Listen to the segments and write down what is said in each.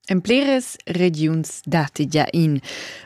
En pliras regiuns datti gia in.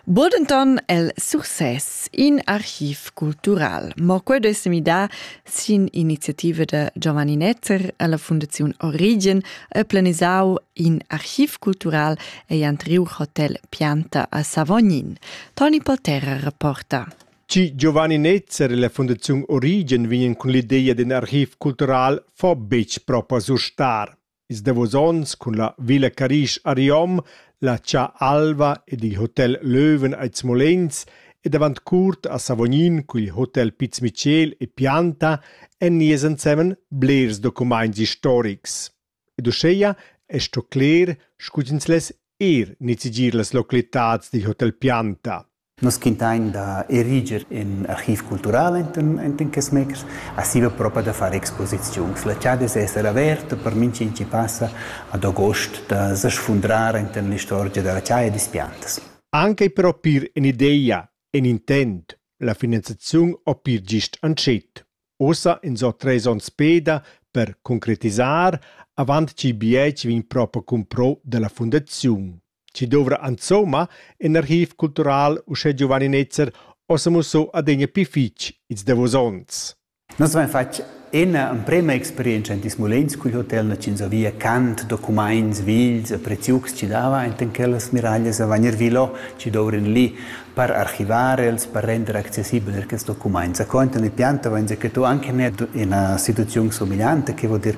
Bodenton el Success, in archiv cultural. Ma quel è midà sin iniziativa da Giovanni Netzer e la Fundaziun Origen e planisau in archiv cultural e antriu hotel Pianta a Savognin. Toni Polterra reporta. Chi Giovanni Netzer e la Fundaziun Origen vegnan cun l'ideia d'in archiv cultural fo betg propa surstar. Ils davos onns cun la Villa Carisch a Riom, la Cha Alva ed il Hotel Löwen a Smolenz ed avant curt a Savognin cun il Hotel Piz Michel e Pianta èn nies ensemen blers documaints historics. Ed uscheia è sto cler, scu ch'ins less er nizigir las localitads dil Hotel Pianta. Nus quintain da eriger ün archiv cultural enten enten quests meters, aschi va propa da far exposiziuns. La chada es esser averta per minch'in chi passa ad agost da sfundrar enten l'istorgia da la chaja e dispiantas. Anche per opir ün'idea, ün intent, la finanziaziun opir gist antschet. Ussa in so tres ons peda per concretisar avant chi bietsch vegn propa cumpro da la fundaziun. chi dovra insomma ün archiv cultural uschè giovaninetzer ho s'amuossò adegna pii fich ils davos ons. Nus avain fat ina emprema experientscha in Tismulins cul hotel Nacins a Via cant documaints vils e preziucs chi dava enten quellas miraglias a Vagnervilo chi dovran lì. Per archivar els, per render accessibel er quest document. Zaconta ni pianta vain dir che tu anche ne ina situaziun somigliante, che vuol dir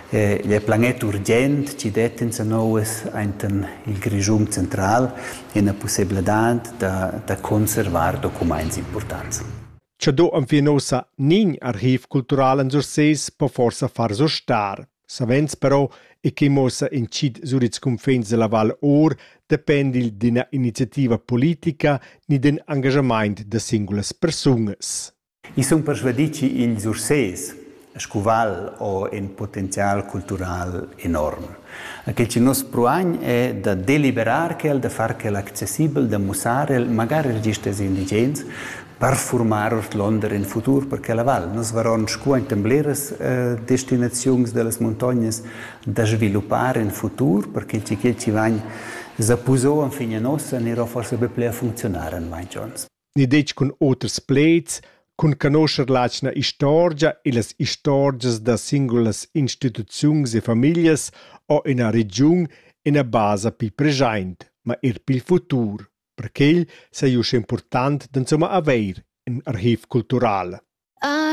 eh, il planet urgent ci det in sa noues enten il Grischum central ina possibilità da, da conservar documents importanti. Cha do am fin ossa nin archiv cultural en Surseis po forsa far so star. Savens però, e quei muossa intschit sur ils cunfins dalla Val Or, dependi d'ina iniziativa politica ni d'in engagamaint da singulas persunas. I sun persvadì chi ils Ursés scu val ho ün potenzial cultural enorm. Quel chi nos pruagn è da deliberar quel, da far quel accessibel, da mussar el, magari register als indigens, per formar ordlonder in futur per quella val. Nus varon scu enten bleras eh, destinaziuns dellas muntognas da sviluppar in futur per che ti che ti vain zapuso an fine nossa nero forse be ple a funzionar en mai Jones. Ni detg cun oters pleds, cun canoscher l'atgna istorgia e las istorgias da singulas instituziuns e familias o ina regiun ina basa pi present, ma er pil futur. Perquei sei uss impurtant d'insumma haver in archiv cultural.